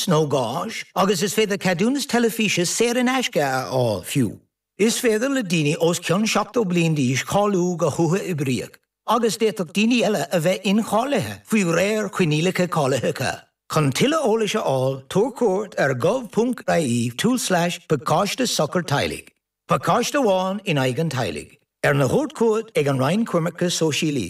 nó gáis agus is féidir ceadúnas teilifíse saor in aisce a fháil fiú. Is féidir le daoine os cionn 70 bliain d'aois cáiliú go huathoibríoch agus d'fhéadfadh daoine eile a bheith incháilithe faoi réir coinníollacha cáilitheacha. Chun tuilleadh eolais a fháil, tabhair cuairt ar gov.ie tulslais pacáiste sochar teaghlaigh, pacáiste amháin in aghaidh an teaghlaigh, arna thabhairt chugat ag an Roinn Coimirce Sóisialaí.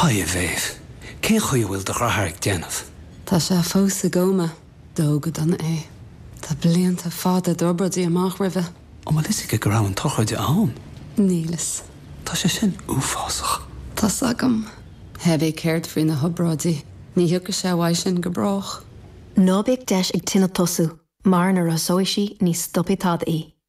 Hi a Mhéabh. Cén chaoi a bhfuil do dhreatháir ag déanamh? Tá sé fós i gcóma. Dódh go dona é. Tá blianta fada d'obráidí amach roimhe. An bhfuil fhios aige go raibh an tsochraide ann? Níl fhios. Tá sé sin uafásach. Tá 's agam. Hé bith céard faoi na hobráidí, ní thiocfaidh sé uaidh sin go brách. Ná bíodh deis ag tine tosú, mar nuair a thosóidh sí ní stopfaidh tada í.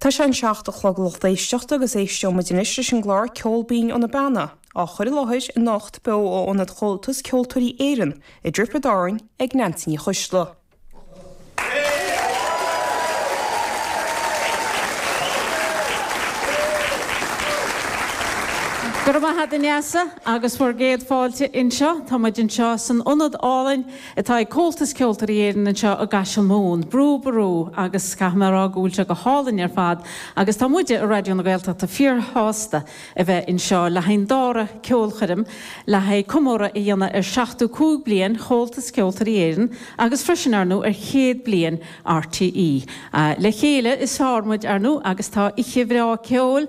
Tá sé an seacht a chlog a lucht éisteachta agus éisteoimid anois leis an gclár Ceol Binn ó na Beanna, á chur i láthair anocht beo ó Ionad Chomhaltas Ceoltóirí Éireann i dTiobraid Árann ag Neansaí Ní Choisdealbha. Go raibh maith 'ad, a Neasa, agus bhur gcéad fáilte anseo. Tá muid anseo san ionad álainn. atá ag Comhaltas Ceoltóirí Éireann anseo i gCaiseal Mumhan, Brú Ború agus caithfidh mé a rá go bhfuil sé go hálainn ar fad agus tá muide i Raidió na Gaeltachta fíorshásta a bheith anseo le haghaidh an dara ceolchoirm le haghaidh comóradh a dhéanamh ar seachtó cúig bliain Chomhaltas Ceoltóirí Éireann agus freisin ar ndóigh ar chéad bliain RTÉ. Le chéile is fearr muid, ar ndóigh, agus tá oíche bhreá ceoil,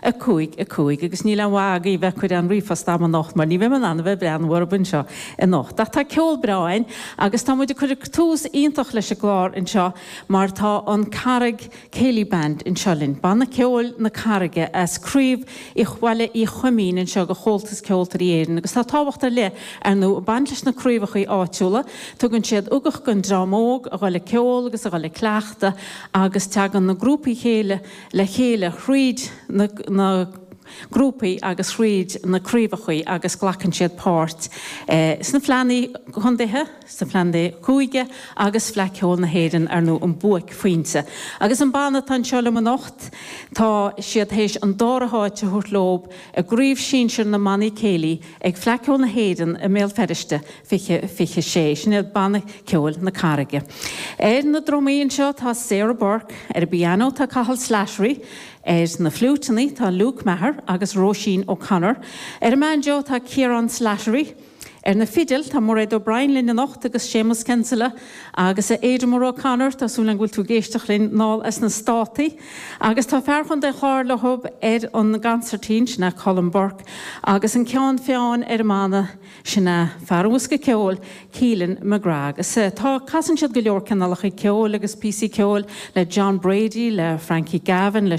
5, 5, agus níl aon mhaith agaibh a bheith ag cur aon ríomhphost agam anocht mar ní bheidh mé in ann a bheith ag breathnú orthub anseo anocht. Ach tá ceol breá againn agus tá muid ag cur tús iontach leis an gclár anseo mar tá an Carraig Céilí Band anseo linn. Banna ceoil na Carraige as craobh Uí Bhaile Uí Choimín anseo de Chomhaltas Ceoltóirí Éireann agus tá tábhacht ar leith ar ndóigh ag baint leis na craobhachaí áitiúla. Tugann siad ugach don dream óg a dhul ag ceol agus a dhul ag cleachtadh agus teagann na grúpaí céilí le chéile thríd na grúpaí agus thríd na craobhachaí agus glacann siad páirt sna fleannaí condaetha, sna fleannaí cúige agus Fleadh Ceoil na hÉireann ar ndóigh an buaicphointe. Agus an banna atá anseo liom anocht tá siad théis an dara háit a thabhairt leob i gcraobh sinsear na mbannaí céilí ag Fleadh Ceoil na hÉireann i mBéal Feiriste 20, 26. Sin iad Banna Ceoil na Carraige. Ar na drumaí anseo tá Sarah Burke, ar an bpiano tá Cathal Slattery, ar na fliúiteannaí tá Luke Maher agus Róisín O'Connor, ar an mbanjo tá Ciarán Slattery, ar na fidil tá Mairéad O'Brien linn anocht agus Séamus Kinsella agus a Eimear O'Connor, tá súil agam go bhfuil tú ag éisteacht linn thall sna Státaí, agus tá fear Chontae an Chláir leo ar an gconsairtín, sin é Colm Burke, agus an ceann feadhna ar an mbanna, Sin é fear an bhosca ceoil, Keelan McGrath. Agus tá, casann siad go leor cineálacha ceoil agus píosaí ceoil le John Brady, le Frankie Gavin, le.